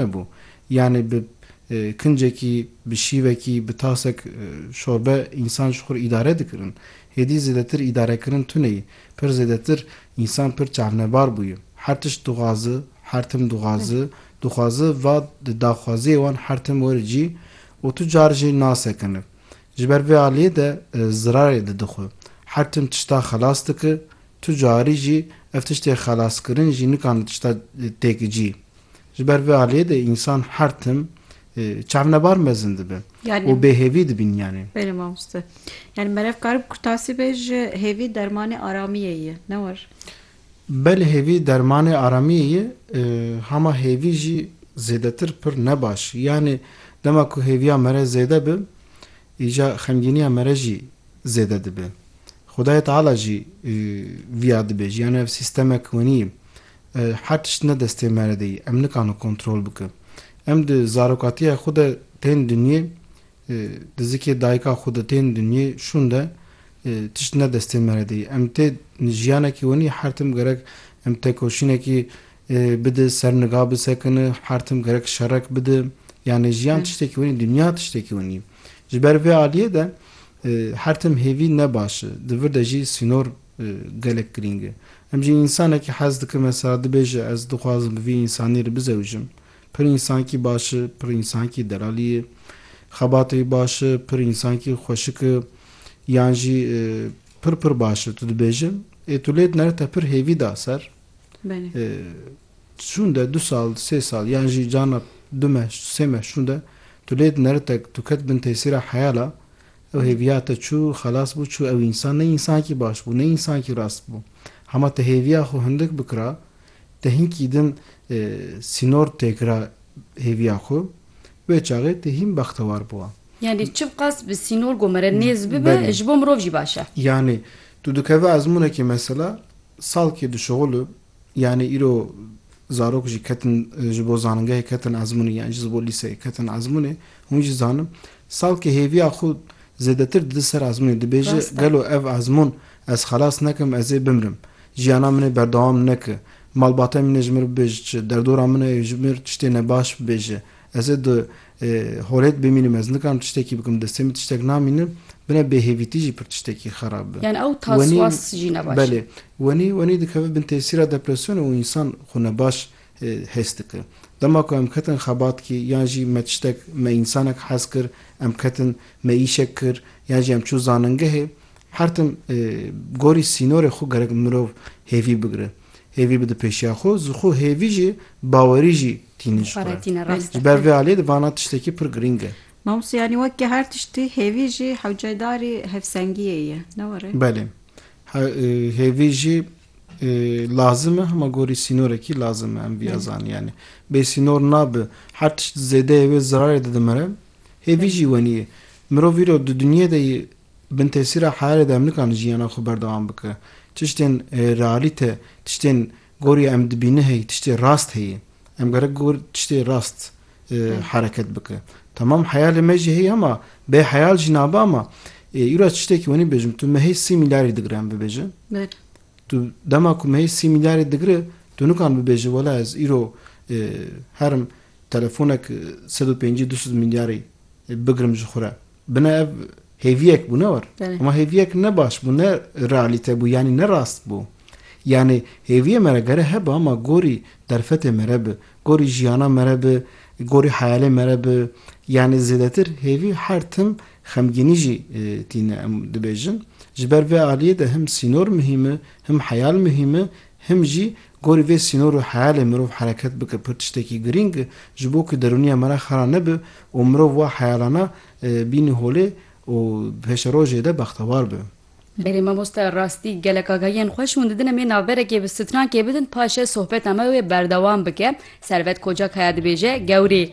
Hebû. Yanî bi kincekî, bi şîvekî, bi tasek şorbe însan ji xwe îdare dikirin. Hêdî zêdetir îdarekirin tuneyî. Pir zêdetir însan pir çavnebar bûye. Her tişt dixwazi, her tim dixwazi, dixwazi va di daxwaziyê wan her tim were cî û tu car jî nasekine. Ji ber vê aliyê de zirarê didi xwe. Her tim tişta xelas dike, tu carî jî ev tiştê xelaskirin jî nikane tişta têkicî. Ji ber vê aliyê de însan her tim çavnebar mezin dibe û bêhêvî dibîn yanê. Belê mamoste. Yanî merev kar bi kurtasî be ji hêvî dermanê aramiyê ye, ne war? Belê hêvî dermanê aramiyê ye, hama hêvî jî zêdetir pir ne baş. Yanî dema ku hêviya mere zêde bi, îja xemgîniya mere jî zêde dibe. Xwedayê Teala jî viya dibêje. Yanî ev sîstemek wenî ye. Her tişt ne destê me re de yê, em nikano kontrol bikin. Em di zarokatiya xwe de tên dinyê, di zikê dayika xwe de tên dinyê, şûn de tişt ne destê me re de yê. Em tê jiyanekî wenî, her tim gerek em têkoşînekî bidi, ser niga bisekini, her tim gerek şerek bidi. Yanî jiyan tiştekî wenî, dinya tiştekî wenî. Ji ber vê aliyê de her tim hêvî ne baş e. Di vir de jî sînor. gelek girîng e. Em jî însanekî hez dikin mesela dibêje ez dixwazim bi vî însanî re bizewicim. Pir însankî baş e, pir însankî delalî ye. Xebatê wî baş e, pir însankî xweşik e. Yan jî pir pir baş e tu dibêje. Ê tu lê dinere te pir hêvî da ser. Şûnde du sal, sê sal yan jî carna du meh, sê meh şûnde tu lê dinere te tu ket bin tesîra heyala Ew hêviya te çû, xelas bû, çû ew însan ne însankî baş bû, ne însankî rast bû. Hema te hêviya xwe hindik bikira, te hinkî din sînor tê kira hêviya xwe, wê çaxê te hîn bextewar bûwa. Yanî çiqas bi sînor ku mere nêz bibe, ji bo mirov jî baş e. Yanî tu dikeve ezmûnekê mesela salkê dişuxul û Yanî îro zarok jî ketin ji bo zanîngehê ketin ezmûnê yan jî ji bo lîseyê ketin ezmûnê. Hûn jî zanin salkê hêviya xwe zêdetir dide ser ezmûnê. Dibêje gelo ev ezmûn ez xelas nekim ez ê bimrim. Jiyana min ê berdewam neke. Malbatên min ê ji mir bibêje çi, derdora min ê ji mir tiştê nebaş bibêje. Ez ê di holê de bimînim, ez nikarim tiştekî bikim, di destê min tiştek namînim, bine bêhêvîtî jî pir tiştekî xerab be. Yani ew taswas jî ne baş e. Belê, wenî wenî dikeve bin tesîra depresyonê û însan xwe nebaş hês dike. Dema ku em ketin xebatkî yan jî me tiştek me însanek hez kir, em ketin me îşek kir yan jî em çûn zanîngehê, her tim gorî sînorê xwe gerek mirov hêvî bigire. Hêvî bi dipêşiya xwe, zixwe hêvî jî bawerî jî tînin ji xwe re. Ji ber vê aliyê di vana tiştekî pir girîng e. Mamoste yanî weke her tiştî hêvî jî hewcedarî hevsengiyê ye, ne were? Belê. Hêvî jî lazim e, hema gorî sînorekî lazim e, em vîya zanîn. Yanî bê sînor nabe. Her tişt zêdeyê wê zirarê de dimire. Hêvî jî wenî ye. Mirov îro di dinyê de yê. bin tesîra heyalê de em nikarin jiyana xwe berdewam bikin. Tiştên realîte, tiştên gorî em dibînin heye, tiştê rast heye. Em gerek gor tiştê rast hereket bikin. Tamam heyalê me jî heye ma bê heyal jî nabe ama îro ez tiştekî wenî bêjim tu mehê sî mîlyarî digire em bibêjin. Tu dema ku mehê sî mîlyarî digire tu nikarin bibêjin wela ez îro herim telefonek sed û pêncî du sed mîlyarî bigirim ji xwe re. Bina ev hêviyek bû ne war. Hema hêviyek ne baş bû, ne realîte bû yanî ne rast bû. Yanî hêviyê me re gere hebe ama gorî derfetê me re bi, gorî jiyana me re bi, gorî heyalê me re bi. Yanî zêdetir hêvî her tim xemgînî jî tîne em dibêjin. Ji ber vê aliyê de him sînor muhîm i, him heyal muhîm i, Him jî gorî vê sînor û heyalê mirov hereket bike pir tiştekî girîng e ji bo ku derûniya me re xera nebe û mirov wa heyalana bînî holê û pêşerojê de bextewar be. Berê mamoste rastî gelek agahiyên xweş hûn didin em ê navberekê bi strankê bidin paşê sohbeta me wê berdewam bike Servet Kocak haya dibêje Gewrî.